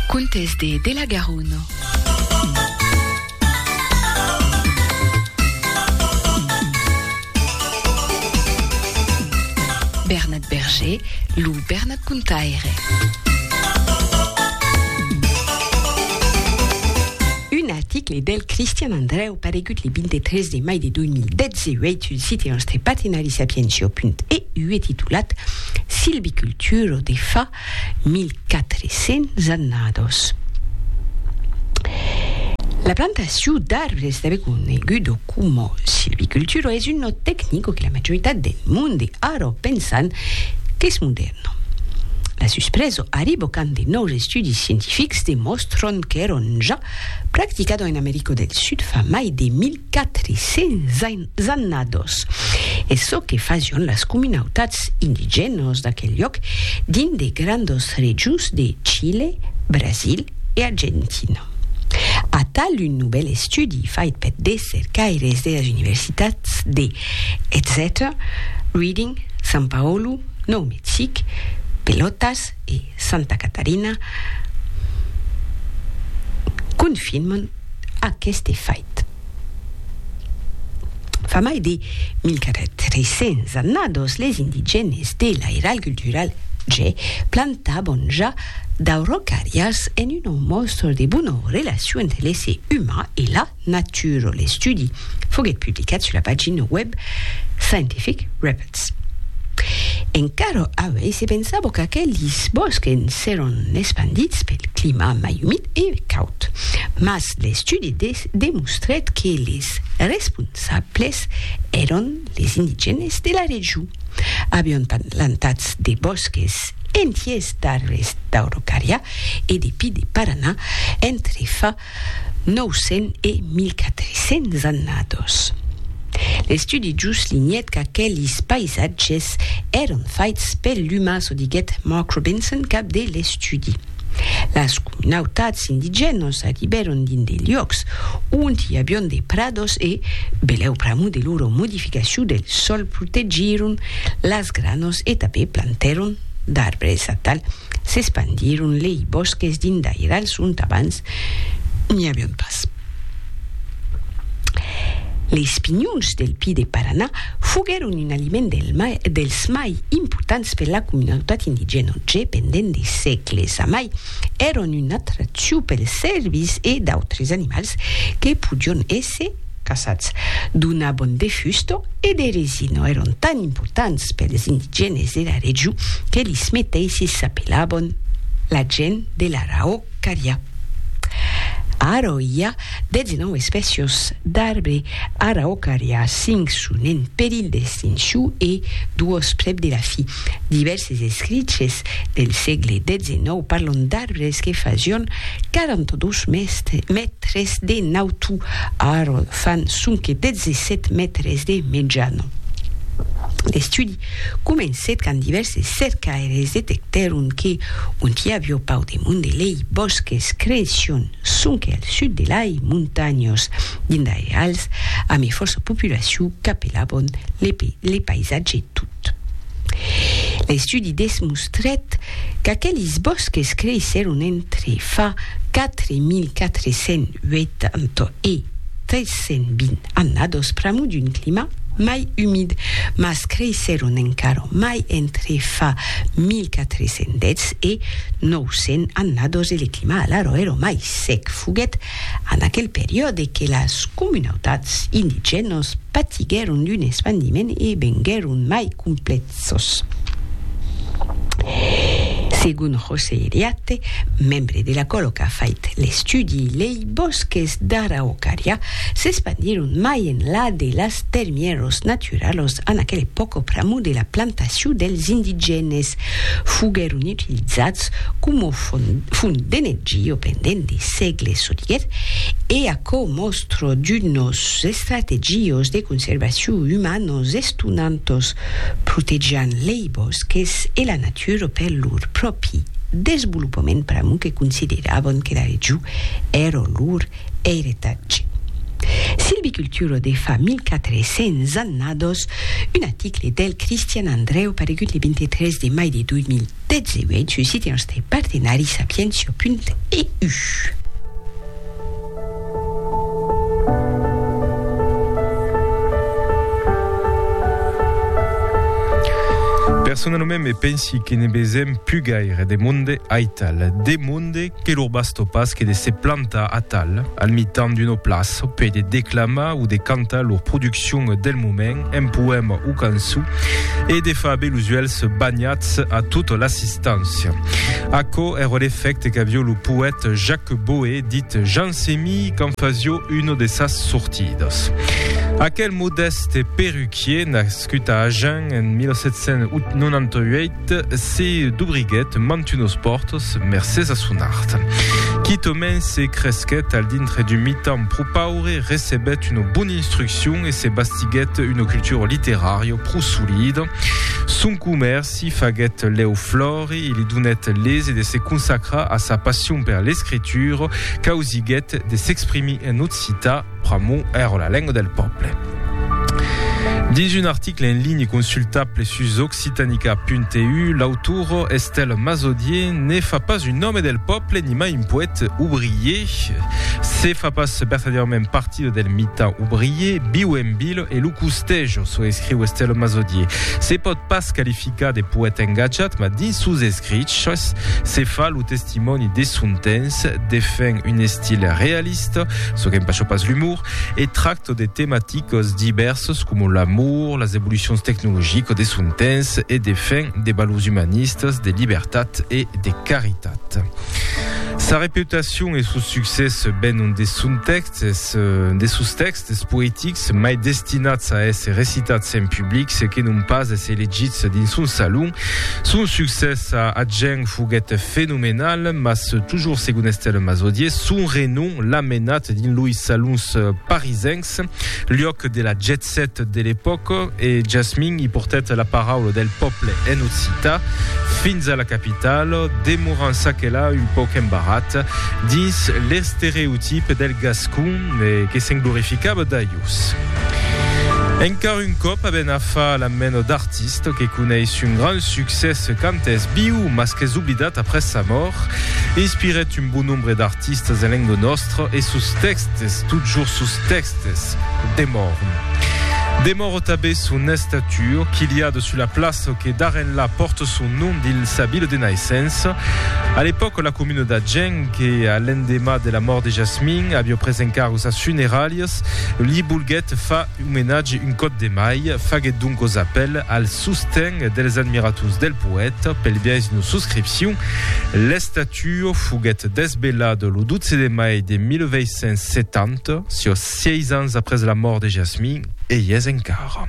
Contes de de la Garonne. Bernat Berger, lo Bernat Contaire. Un aticle del Cristian Andreu. Paregut le 23 de mai de 2018, un site nòstre partenari Sapientiò.eu e titulat Silviculturo de fa 1400 annados. La plantacion d'arbres tanben conegudo coma silviculturo es un nòt tecnico que la majoritat del monde ara pensan qu'es modèrna. La suspreso arribo quand de nòus estudis scientifics demòstron qu'èron ja practicado en Americo del Sud fa mai de 1400 annados, e çò que fasión las comunautats indigènos d'aquel lloc dins de grandos rejos de Chile, Brasil e Argentina. Atal un novèl estudi fait per de cercaires de las universitats de, etcètera, Reading, São Paulo, Nou Mexic, Pelotas e. Santa Catarina confirman aqueste fait. Fa mai de 1.400 annados les indigènes de l'Airal Cultural Ge plantaban ja d'aurocarrias en un òm mòstor de bona relacion entre l'èsser uman e la Nature, l'estudi foguèt publicat sus la pagina web Scientific Reports. Encara avui se pensava qu'aquelis bòsques seràn espandits pel clima mai umid e caud, mas l'estudi demostrèt que les responsables èran les indigènes de la region. Avián plantats de bòsques entiers d'arbres d'Aurocària e de pi de Paranà entre fa 900 e 1400 annados. L'estudi juslinhèt qu'aquelis paisatges èran faits per l'umà, çò diguèt Mark Robinson, cap de l'estudi. Las comunautats indigènas arribèron dins de luòcs ont i avián de prados e, belèu pr'amor de lora modificacion del sòl, protegíron las granas e tanben plantèron d'arbres atal s'espandiron lei bòsques dindairals ont abans n'i avián pas. Leis pinhons del pi de Paranà foguèron un aliment dels mai impotants per la comunautat indigèna ont je pendent de sègles amai èron una atraccion pels cèrvis e d'autres animals que podion èsser caçats d'una bond de fusto e de resino èron tan importants pels indigènes de la region que lis meteissis s'apelabon la gent de l'Araocaria. Ara i a 19 espècios d'arbre Araocaria, 5 son en perilh d'extincion e 2 prèp de la fin. Divèrses escriches del sègle xix parlon d'arbres que fasión 42 mètres de nautu, ara fan sonque 17 mètres de mejana. L'estudi comencèt quand divèrses cercaires detectèron que, ont i avió pauc de monde, lei bòsques cression sonque al sud de lai montanhas, dins d'airals ame fòrça populacion qu'apelabon le paisatge tut. L'estudi desmostrèt qu'aquelis bòsques creissèron entre fa 4.480 e 320 annados pr'amor d'un clima mai umid, mas creissèron encara mai entre fa 1410 e 900 annados e le clima alara èra mai sec. Foguèt En aquel periòde que las comunautats indigènos patiguèron d'un espandiment e venguèron mai complèxos. Segon José Eliatte, membre de l'Acòlo qu'a fait l'estudi, lei bòsques d'Araucària s'espandiron mai enlà de las termièros naturals lectura, los an aquel epòca pr'amor de la plantacion dels indigènes, foguèron utilizats coma font d'energia pendent de sègles sodièr e aquò mòstra d'unos estrategios de conservacion umanos estonantos, protejant lei bòsques e la natura per lor pròpi desvolopament pr'amor que consideràvan que la region èra lor Eiretatge. Silviculturo de fa 1400 annados, un aticle del Cristian Andreu paregut le 23 de mai de 2018 sus site nòstre partenari sapientia.eu. Personalament me pensi que ne besèm pus gaire de monde aital, de monde Que lor bastó pas que de se plantar atal, al mitan d'una plaça, per de declamar o de cantar lor produccion del moment, en poèma o cançon, e de far aver los uèlhs banhats a tota l'assistància. Aquò èra l'efècte qu'avió lo poèt Jacques Boé, dit Jansemí, quand fasió una de sas sortidas. Aquel modèste perruquier n'a Nascut a Agen en 1798, se dobriguèt mantunos pòrtos mercés a son art. Quitament se cresquèt al dintre d'un mitan pro paure, recebèt una bona instruccion e se bastiguèt una cultura literària pro solida. Son comèrci faguèt lèu flòri e li donèt l'ese de se consacrar a sa passion per l'escritura, causiguèt de s'exprimir en occitan, Pr'amor èra la lenga del pòble. Dins un article en linha consultable sus occitanica.eu, l'autora Estelle Mazodier ne fa pas un òme del pòble nimai un poète obrier. Se fa pas vertadièrament partida del mitan obrier, viu en vil e lo costeja, çò escriu Estelle Mazodier. Se pòt pas qualificar de poète engatjat, mas dins sos escriches se fa lo testimòni de son temps, defend un estil realista, L'artista çò qu'empasha pas l'umor e tracta de tematicas divèrsas coma l'amor, las evolucions tecnologicas de son temps e de fin de valors umanistas, de libertat e de caritat. Sa reputacion e son succès venon de son tèxtes, de sos tèxtes, D'estes poetics, mai destinats a èsser recitats en public se que non pas èsser legits dins un salon. Son succès a Agen foguèt fenomenal, mas tojors segon Estelle Mazodier, son renom l'a menat dins loi salons parisencs, luòc de la jet set de l'epòca, e Jasmin i portèt la paraula del pòble en occitan fins a la capitala, demorant çaquelà un pauc embarrat dins l'estereotip del gascon. E que se'n glorificava d'aius. Encara un còp aben a far la mena d'artista que coneis un grand succès quand es viu mas qu'es oblidat après sa mòrt. Inspirèt un bon nombre d'artistas en lenga nòstra e sos tèxtes, totjorn sos tèxtes, demòran. Demòra tanben son estatua, quilhada sus la plaça que d'ara enlà pòrta son nom dins sa vila de naissença. A l'epòca la comuna d'Agen, que a l'endemà de la mòrt de Jasmin, avió pres encargo sas funeralhas, li volguèt far omenatge un còp de mai, faguèt doncos apèl al sosten dels admirators del poèta pel biais d'una suscripcion. L'estatuo foguèt desvelada lo 12 de mai de 1870, siò sièis ans après la mòrt de Jasmin, e i es encara.